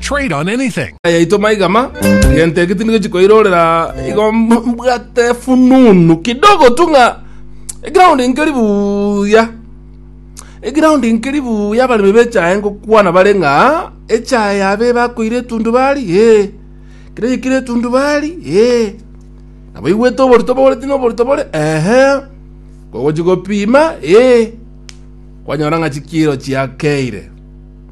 Trade on anything. yaito maiga ma gento eke tindi gochi koirorera igo mb- mbwate fununu kidogo tu ng'a eground nkeri buya eground nkeri buya abaremi bechae ngokwana bare ng'a echae yabe bakoire etundubari ee kere yekire etundubari ee nabo igwete oborito bore tino oborito bore ehe kogochi gopima ee kwanyora ng'a chikiro chiakeire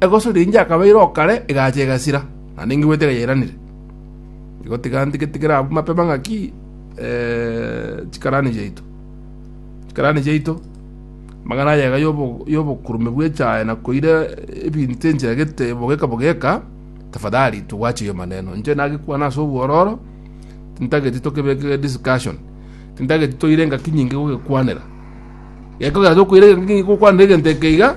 Egoso ri'enchia akabeire o kare egacha egasira, naende ingigwete egayairanire. Igo tiga ntigetigere abwo mapema ng'aki chikarani chiaito. Chikarani chiaito, amagana ayega y'obokurume bw'echae na koira ebinto enchera gete bogeka bogeka, tafadhali tugwache hiyo maneno. Inche nagekwana ase obwororo, tintageti tokebeke discussion. Tintageti toire engaki nyinge gogekwanera. Gekogera tokoira engaki nyinge gokwanera egento ekeiga,